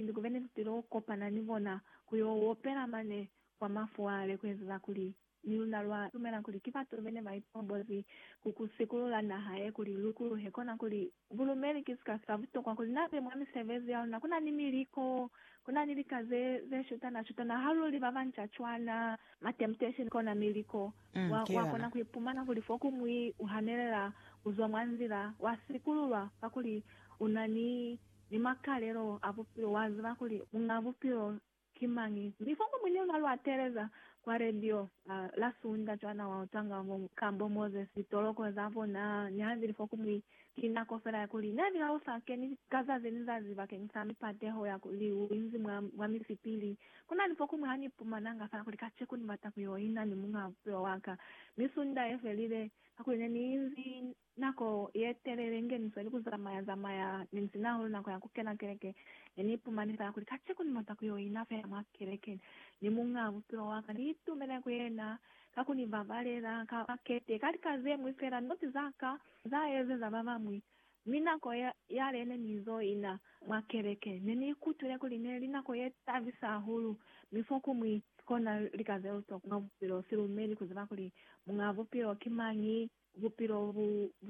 Inzi kuve ne sitilo kopana ni bona ku yo opela mane kwa mafuwale ku ezeza kuli ni luna lwa lumela kuli ki batu bene ba ipombozi ku ku sikulula naha ye kuli lu kuluhe kona kuli bulumeli ki sika sa butokwa kuli na be mwa misebezi ya luna. Ku na ni miliko, ku na ni lika ze ze shutana shutana ha lu li ba banca cwana. Ma temptation kona miliko. Wa, wa kona ku ipumana kuli fo ku mwi u hanelela ku zwa mwa nzila, wa sikululwa kakuli u na ni ni makalelo a bupilo, wa ziba kuli Muñ'a Bupilo ki mañi. Mi fo ko mune mwa lwa teleza kwa radio a la sunda cwana wa utanga bo ka bo Moses, toloko za bona, ni ha zili fo ku mwi, ki nako fela ya kuli ne ni lausa ke ni ka zazi ni zazi bakeng sa mipateho ya kuli u inzi mwa, mwa misipili. Ku na ni fo kumwi ha ni pumananga fela kuli kaceku ni bata ku yo ina ni Muñ'a Bupilo wa ka. Mi sunda ye felile, kakuli ne ni inzi Nako yetelele ingeniswe ni kuzamaya zamaya ninzina hahulu nako ya kukena keleke. Neni ipumani fela kuli kaceko nibata kuyo ina fela mwa keleke ni Muñaa Bupilo waka. Ni itumele ku Yena ka kuni babalela ka bakete ka lika zemwi fela not zaka za ezeza babamwi. Mi nako yale nenizo ina mwa keleke, neni ikutwile kuli neli nako ye tabisa hahulu, mi fokumwi kona lika zelutokwa mwa bupilo. Silumeli kuziba kuli Muñaa Bupilo ki mañi Bupilo bu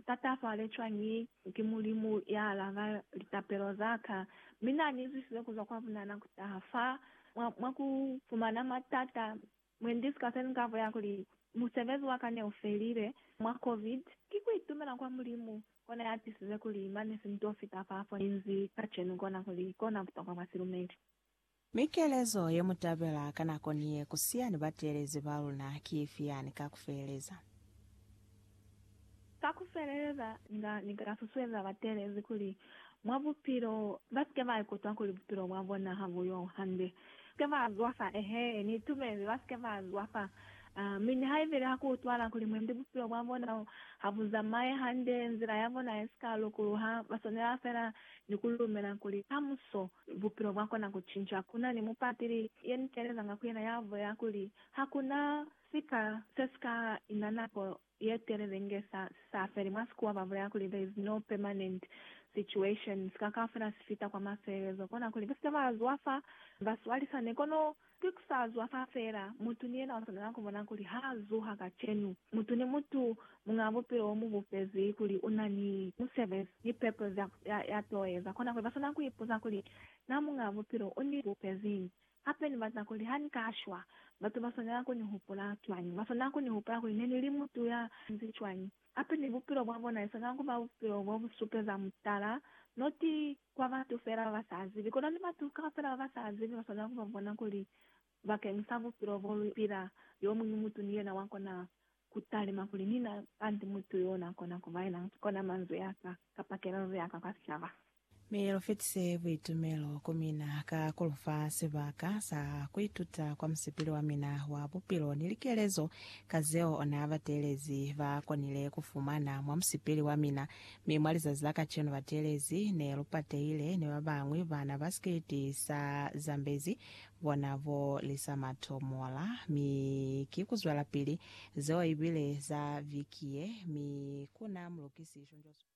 tatafale cwañi ki Mulimu ya alaba litapelo za ka? Mi na ni zwisize ku zwa kwa bunana ku taha fa mwa, mwa ku fumana matata. Mwendi sika se ni ka bulela kuli musebezi wa ka ne u felile mwa Covid, ki ku itumela kwa Mulimu kona ya tisize kuli mane si nto fita fa fo ni nzi kacenu kona, kuli kona butokwa bwa silumeli. Mi kelezo ye mu tabela ka nako ni ye ku siya ni bateelezi ba luna ki ifi yani ka ku feleleza? Ka ku feleleza, inga ni ka susueza bateelezi kuli mwa bupilo ba si ke ba ikutwa kuli bupilo bwa bona ha bu yo hande. Ba si ke ba zwafa, ehe, ni itumezi, ba si ke ba zwafa. Mi nihaibile ha ku utwahala kuli mwendi bupilo bwa bona ha bu zamaye hande, nzila ya bona ye si ka lukuluha, ba swanela fela ni ku lumela kuli kamuso bupilo bwa kona ku cinca. Ku na ni mupatili ye ni teelezanga ku yena ya bulela kuli, Ha ku na sika se si ka ina nako ye telele inge sa si sa feli. Mwa Sikuwa ba bulela kuli, There is no permanent situation. Sika kaufela si fita kwa mafelelezo. Kona kuli, ba si ke ba zwa fa ba swalisane. Kono Ki ku sa zwa fa fela, mutu ni yena u swanela ku bona kuli ha zuha kacenu. Mutu ni mutu muñ'a bupilo mu bupezi kuli u na ni musebezi ni pepo za ya t'o eza. Kona kuli ba swanela ku ipuza kuli, Na muñ'a bupilo u ni bupeziñi? Hape ni bata kuli ha ni ka shwa, batu ba swanela ku ni hupula cwañi? Ba swanela ku ni hupula kuli ne ni li mutu ya nzi cwañi? Hape ni bupilo bwa bona esaka ku ba bupilo bo bu supeza mutala, noti kwa batu fela ba ba sa zibi, kono ni batu kaufela ba ba sa zibi ba swanela ku ba bona kuli bakeng sa bupilo bo lu pila, yo muñwi mutu ni yena wa kona ku talima kuli, Ni na kanti mutu yo na kona ku ba yena, kona manzwi a ka, kapa kelelo ya ka kwa sicaba. Mi lu fetise buitumelo ku mina ka ku lu fa sibaka sa ku ituta kwa musipili wa mina wa bupilo ni likelezo ka zeo na bateelezi ba konile ku fumana mwa musipili wa mina. Mi mwa lizazi la kacenu bateelezi ne lu patehile ni ba bañwi bana ba sikiliti sa Zambezi bona bo Lisa Matomola. Mi ki ku zwelapili zeo ibile za viki ye, mi ku na mulukisi Shunjo Swayo.